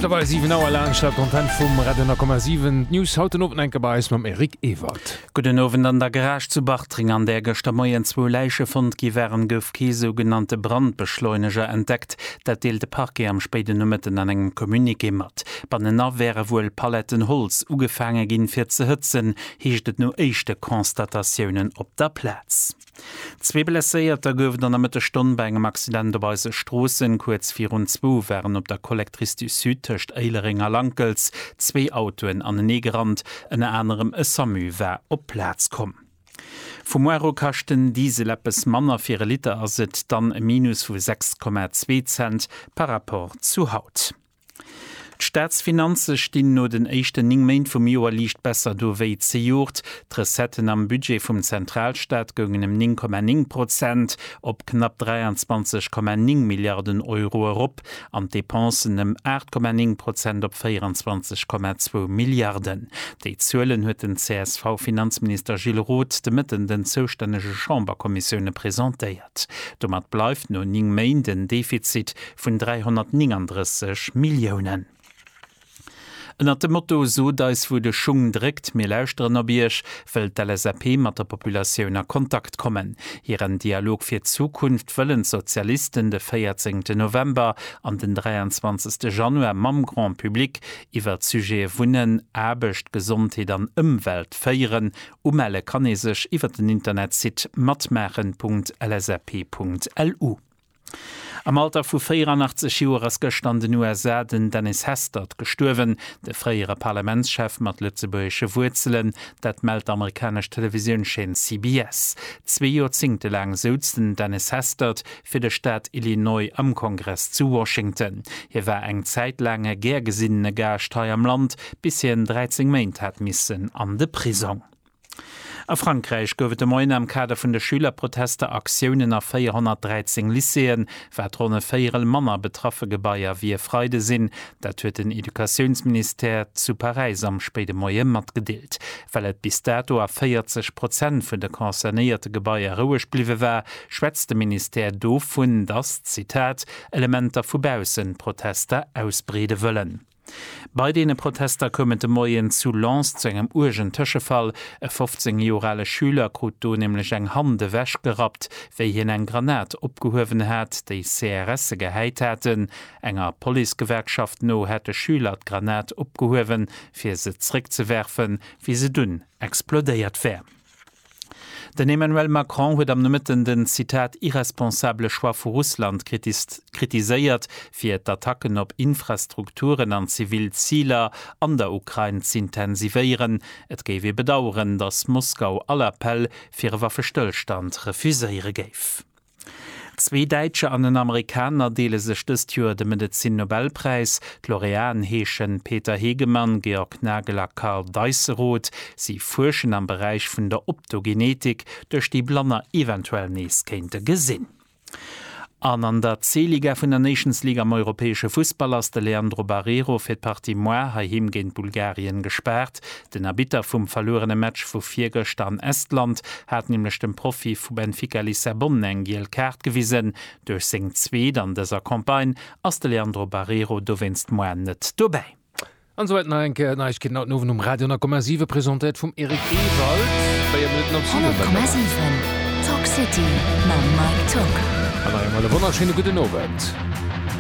Mëttlerweil 7 Auer laang Start Content vum Radio 10,7. D'News haut den Owend enke bei eis mam Eric Ewald. Gudden Owend, An der Garage zu Bartreng, an där gëschter Moien zwou Läiche fonnt gi waren, gouf kee sougenannte Brandbeschleuneger entdeckt. Dat deelt de Parquet am spéiden Nomëtten an engem Communiqué mat. Bannenan wäre wuel Paletten Holz ugefaange ginn, fir ze hëtzen, heescht et no éischte Constatatiounen op der Plaz. Zwee Blesséierter gouf et an der Mëttesstonn bei engem Accident op eise Stroossen. Kuerz virun zwou waren op der Collectrice du Sud tëscht Éilereng a Lankels zwee Autoen anenee gerannt. Ënner anerem e Samu war op d'Plaz komm. Vum Mois u kascht den Diesel eppes manner, fir e Liter ass et dann e Minus vu 6,2 Cent par Rapport zu haut. D'Staatsfinanze stinn no den éischten 9 Méint vum Joer liicht besser do wéi zejoert. D'Recetten am Budget vum Zentralstaat goungen ëm 9,9 Prozent op knapp 23,9 Milliarden Euro erop an d'Depensen ëm 8,9 Prozent op 24,2 Milliarden. Déi Zuelen huet den CSV-Finanzminister Gilles Roth de Mëtten den zoustännege Chamberkommissioune presentéiert. Milliard. Domat bleift no 9 Méint en Defizit vun 339 Milliounen. Ënnert dem Motto Sot eis wou de Schung dréckt, mir lauschteren op Iech, wëll d'LSAP mat der Populatioun a Kontakt kommen. Hiren Dialog fir d'Zukunft wëllen d'Sozialisten de 14 ten November an den 23 te Januar mam Grand Public iwwert d'Sujete Wunnen, Aarbecht, Gesondheet an Ëmwelt féieren Umelle kann ee sech iwwer den Internetsite matmaachen.lsap.lu. Am Alter vu 84 Joer ass gëschter an den USA den Dennis Hastert gestuerwen, de fréiere Parlamentschef mat lëtzebuergesche Wuerzelen. Dat mellt d'amerikanesch Televisiounscheen CBS. Zwee Joerzéngte laang souz den Dennis Hastert fir de Staat Illinois am Kongress zu Washington. Hie war eng Zäit laang e gär gesinnene Gaascht hei am Land, bis hien 13 Méint hat missen an de Prisong. A Frankräich gouf et de Moien am Kader vun de Schülerprotester Aktiounen a 413 Lycéeën, wat ronn e Véierel manner betraffe Gebaier wéi e Freide sinn. Dat huet den Educatiounsministère zu Paräis am spéide Moie matgedeelt. Well et bis dato a 40 Prozent vun de concernéierte Gebaier roueg bliwwe war, schwätzt de Ministère dovun, dass, Zitat, Elementer vu baussen d'Protester ausbreede wëllen. Bei deene Protester koum et de Moien zu Lens zu engem uergen Tëschefall. E 15 Joer ale Schüler krut do nämlech eng Hand ewechgerappt, wéi hien eng Granat opgehuewen hat, déi CRSe gehäit haten. Enger Policegewerkschaft no hätt de Schüler d'Granat opgehuewen, fir se zeréckzewerfen, wéi se dunn explodéiert wär. Den Emmanuel Macron huet am Nomëtten den, Zitat, irresponsabele Choix vu Russland kritiséiert, fir d'Attacken op Infrastrukturen an zivil Ziler an der Ukrain z'intensivéieren. Et géif ee bedaueren, datt Moskau all Appell fir e Waffestëllstand refuséiere géif. Zwee Däitscher an en Amerikaner deele sech dëst Joer de Medezin-Nobelpräis. D'Laureaten heeschen Peter Hegemann, Georg Nagel a Karl Deisseroth. Si fuerschen am Beräich vun der Optogenetik, duerch déi Blanner eventuell nees kéinte gesinn. An an der C-Liga vun der Nations League am europäesche Fussball ass de Leandro Barreiro fir d'Partie Moi heiheem géint Bulgarien gespaart. Den Arbitter vum verluerene Match vu virgëschter an Estland hat nämlech dem Profi vu Benfica Lissabon eng giel Kaart gewisen. Duerch seng zweet an dëser Campagne ass de Leandro Barreiro dowéinst moar net dobäi. An souwäit nach eng Kéier Neiegkeeten haut den Owend um Radio an a Komma 7, presentéiert vum Eric Ewald. Véier Minutten op 7 ass et. 100,7 Talk City mam Mike Tocq. An nach eemol e wonnerschéine gudden Owend.